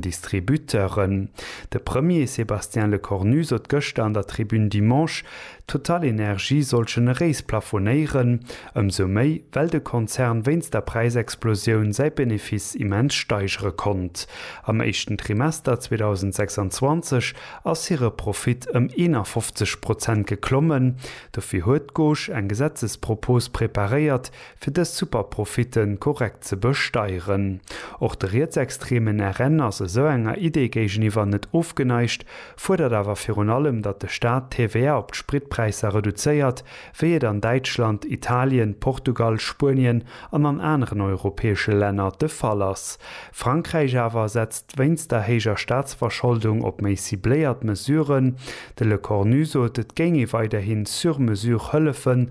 Distributeuren. De Premier Sébastien Lecornu sot gëschter an der Tribune Dimanche, TotalEnergies soll generéis plafonéieren, ëmsou méi, well de Konzern wéinst der Präisexplosioun säi Benefice immens steigere konnt. Am éischten Trimester 2026 ass hire Profit ëm 51 Prozent geklommen. Dofir huet d'Gauche eng Gesetzespropos preparéiert, fir dës Superprofitte korrekt ze besteieren. Och de rietsextremen RN ass esou enger Idee géigeniwwer net ofgeneigt, fuerdert awer virun allem, datt de Staat d'TVA op d'Spritpräisser reduzéiert, wéi et an Däitschland, Italien, Portugal, Spuenien an an aneren europäesche Länner de Fall ass. Frankräich awer setzt wéinst der héijer Staatsverscholdung op méi cibléiert Mesuren. De Lecornu sot, et géing ee weiderhi sur mesure hëllefen,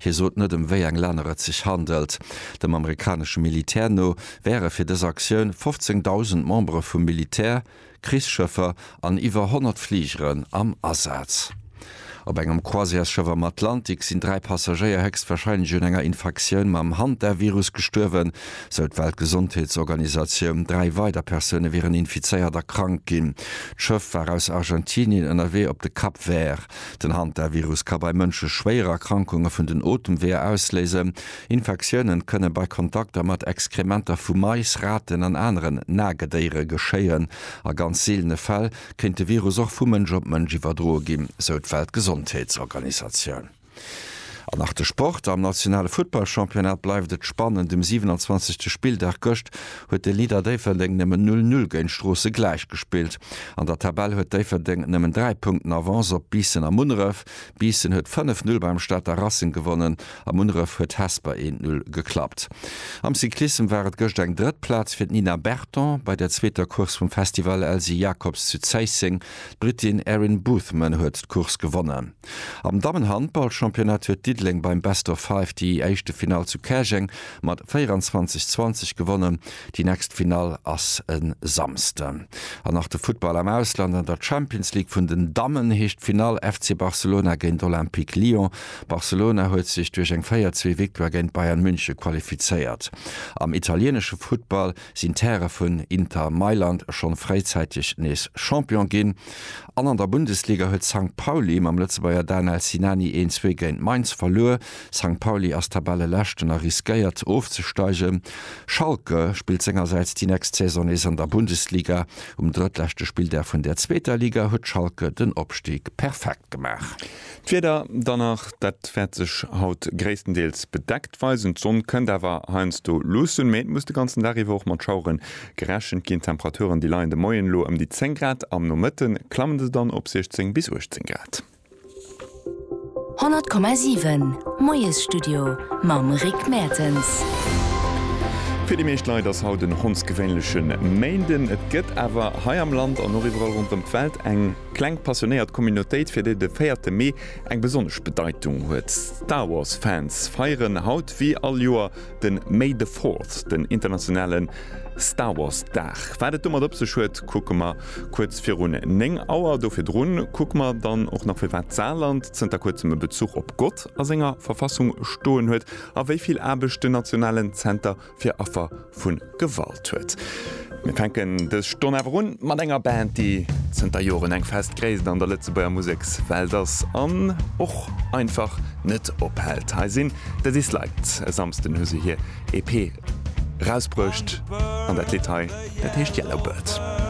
Hie sot net, ëm wéi eng Länner et sech handelt. Dem amerikanesche Militär no wäre fir dës Aktioun 15.000 Membere vum Militär, Krichsschëffer an iwwer 100 Fligeren am Asaz. Op engem Croisièresschëff am Atlantik sinn dräi Passagéier héchstwarscheinlech un enger Infektioun mam Hantavirus gestuerwen, sou d'Weltgesondheetsorganisatioun. Dräi weider Persoune wieren infizéiert a krank ginn. D'Schëff war aus Argentinien ënnerwee op de Cap Vert. Den Hantavirus ka bei Mënsche schwéier Erkrankunge vun den Otemweeër ausléisen. Infektiounen kënne bei Kontakter mat Exkrementer vu Mais, Raten an aneren Nagedéiere geschéien. A ganz seelene Fäll kéint de Virus och vu Mënsch op Mënsch iwwerdroe ginn, sou d'Weltgesondheetsorganisatioun. An nach de Sport, Am nationale Futtballchampionnat bleift et spannend um 27. Spilldag. Gëscht huet de Leader Déifferdeng nëmmen 0 Null géint Stroossen gläichgespillt. An der Tabell huet Déifferdeng nëmmen 3 Punkten Avance op Biissen a Munneref. Biissen huet 5 Null beim Stater Racing gewonnen a Munneref huet Hesper 1 Null geklappt. Am Cyclissem war et gëscht eng drëtt Plaz fir d'Nina Berton bei der zweeter Course vum Festival Elsy Jacobs zu Zéisseng. D'Brittin Erin Boothman huet d'Course gewonnen. Am Dammenhandballchampionnat huet Diddeleng beim Best of Five déi éischte Finall zu Käerjeng mat 24, 20 gewonnen. Déi nächst Finall ass e Samsden. An nach de Futtball am Ausland, An der Champions League vun den Dammen heescht d'Finall FC Barcelona géint Olympique Lyon. Barcelona huet sech duerch eng 4, 2 Victoire géint Bayern München qualifizéiert. Am italieenesche Futtball, sinn d'Häre vun Inter Mailand schonn fréizäiteg nees Champion ginn an an der Bundesliga huet Sankt Pauli mam Lëtzebuerger Danel Sinani een zwee géint Mainz verluer. Sankt Pauli ass Tabelleleschten a riskéiert ofzesteigen. Schalke spillt sengersäits déi nächst Saison nees an der Bundesliga. Um drëttleschte Spilldag vun der zweeter Liga huet Schalke den Opstig perfekt gemaach. D'Wieder dann nach, dat wäert sech haut gréisstendeels bedeckt weisen. D'Sonn kënnt awer heiansdo luussen, mee et muss de ganzen Dag iwwer och mat Schauere gerechent ginn. D'Temperaturen, déi leien de Moien elo ëm déi 10 Grad, am Nomëtte klamme se dann op 16 bis 18 Grad. 100,7 Moiesstudio mam Rick Mertens. Fir déi meescht Leit ass haut en hondsgewéinleche Méinden. Et gëtt awer hei am Land an och iwwerall ronderëm d'Welt eng. Kleng passionéiert Communautéit fir déi de véierte Mee eng besonnesch Bedeitung huet. Star Wars Fans feieren haut wéi all Joer den May the Fourth, den internationalen Star Wars Dag. Wat et domat op sech huet kucke mer kuerz virun 9 Auer. Do virdrun kucke mer dann och nach firwat d'Saarland zënter kuerzem e Bezuch op Gott a senger Verfassung stoen huet a wéi vill Aarbecht den nationalen Zenter fir Affer vu Gewalt huet. Mir fänken dës Stonn awer un mat enger Band, déi zënter Joren eng fest Gréisst an der Lëtzebuerger Musekswelt ass an och einfach net ophält. Hei sinn The Disliked. E Samsden hu se hir EP erausbruecht an dat Lidd hei, dat heescht Yellow Bird.